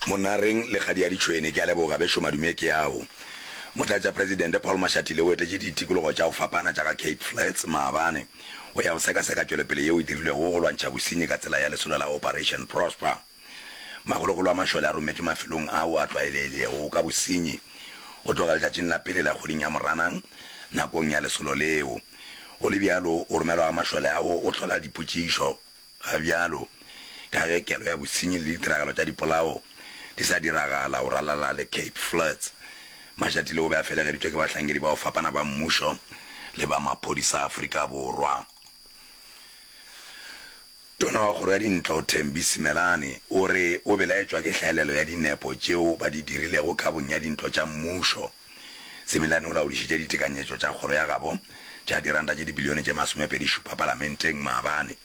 Monareng le Kgadi ya Ditšhwene, ke a leboga bešo madume ke ao. Motlatšapresidente Paul Mashatile o etetše ditikologo tša go fapana tša ga Cape Flats maabane go ya go sekaseka tšwelopele yeo e dirilwego go lwantšha bosenyi ka tsela ya lesolo la Operation Prosper. Makgolokgolo a mašole a rometšwe mafelong ao a tlwaelegilego ka bosenyi go tloga letšatšing la pele la kgweding ya Moranang nakong ya lesolo leo. Go le bjalo, go romelwa ga mašole ao go hlola dipotšišo Ga bjalo, ka ge kelo ya bosenyi le ditiragalo tša dipolao di sa diragala go ralala le Cape Flats, Mashatile o be a felegeditšwe ke bahlankedi ba go fapana ba mmušo le ba maphodisa a Afrika Borwa. Tona wa Kgoro ya Dintlo, Thembi Simelane, o re o belaetšwa ke hlaelelo ya dinepo tšeo ba di dirilego kabong ya dintlo tša mmušo. Semilane o laodišitše ditekanyetšo tša kgoro ya gabo tša diranta tše dibilione tše masomepedi šupa palamenteng maabane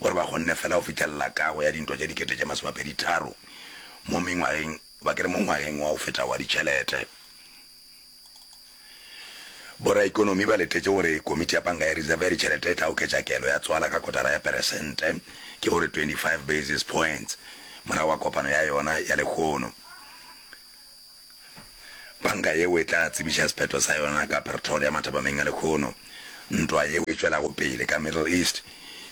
gore ba kgonne fela go fihlelela kago ya dintwa tše dikete tše masomepedi tharo mo mengwageng ba ke re mo ngwageng wa go feta wa ditšhelete. Boraikonomi ba letetše gore komiti ya panka ya reserve ya ditšhelete e tla oketša kelo ya tswala ka kotara ya peresente, ke go re 25 basis points, morago ga kopano ya yona ya lekgono. Panka yeo e tla tsebiša sephetho sa yona ka Pretoria mathapameng a lekhono. Ntwa yeo e tšwelago pele ka Middle East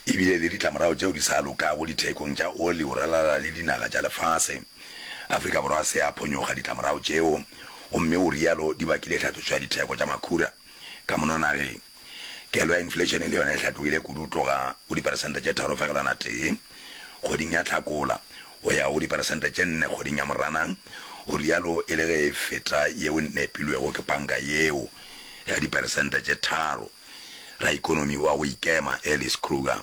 e bile le ditlamorago tšeo di sa lokago dithekong tša oli go ralala le dinaga tša lefase. Afrika Borwa se a phonyoga ditlamorago tšeo gomme o rialo di bakile tlhatlošo ya ditheko tša makhura ka mono nageng. Kelo ya inflation le yona e hlatogile kudu go tloga go diperesente tše tharo fegelwana tee kgweding ya Hlakola go ya go diperesente tše nne kgweding ya Moranang, o realo e le ge e feta yeo e nepilwego ke panka yeo ya diperesente tše tharo, raikonomi wa go ikema Alice Kruger.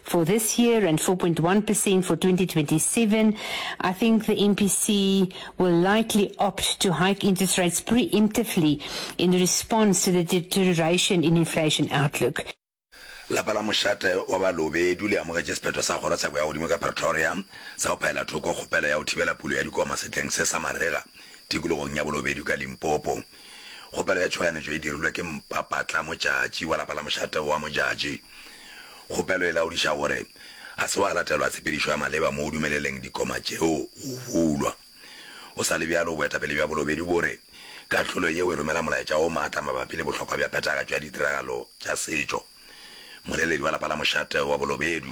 for this year and 4.1% for 2027, I think the MPC will likely opt to hike interest rates preemptively in response to the deterioration in inflation outlook. lapa la mošate wa balobedu le amogetše sephetho sa kgoro tsheko ya godimo ka pretoria sa go phaela thoko kgopelo ya go thibela pulo ya dikoma setleng se sa marega tikologong ya bolobedu ka limpopo Kgopelo ya tšhoganetšo e dirilwe ke mpapatla motšatši wa lapa la mošate wa motšatši. Kgopelo e laodiša gore ga se wa latelwa tshepedišo ya maleba mo o dumeleleng dikoma tšeo go bulwa. Go sa le bjalo, boetapele bja bolobedi bo re kahlolo yeo e romela molaetša o maatla mabapi le bohlokwa bja phethagatšo ya ditiragalo tša setšo. Moleledi wa lapa la mošate wa bolobedu,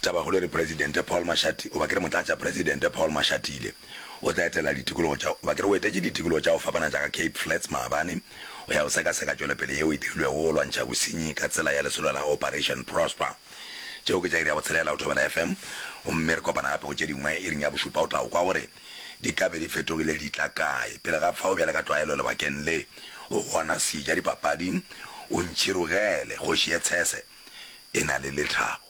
Tabakgolo e re Presidente Paul Mashati, goba ke re Motlatša Presidente Paul Mashatile, o tla etela ditikologo tša, goba ke re o etetše ditikologo tša go fapana tša ga Cape Flats maabane go ya go sekaseka tšwelopele yeo e dirilwego go lwantšha bosenyi ka tsela ya lesolo la Operation Prosper. Tšeo ke tša iri ya bo tshelela go Thobela FM, gomme re kopana gape go tše dingwe iring ya bošupa. O tla go kwa gore di ka be di fetogile di tla kae. Pele ga fao, bjale ka tlwaelo lebakeng le, o gona, Seja dipapading, o ntšhirogele, kgoši ye tshese. e na le lethabo.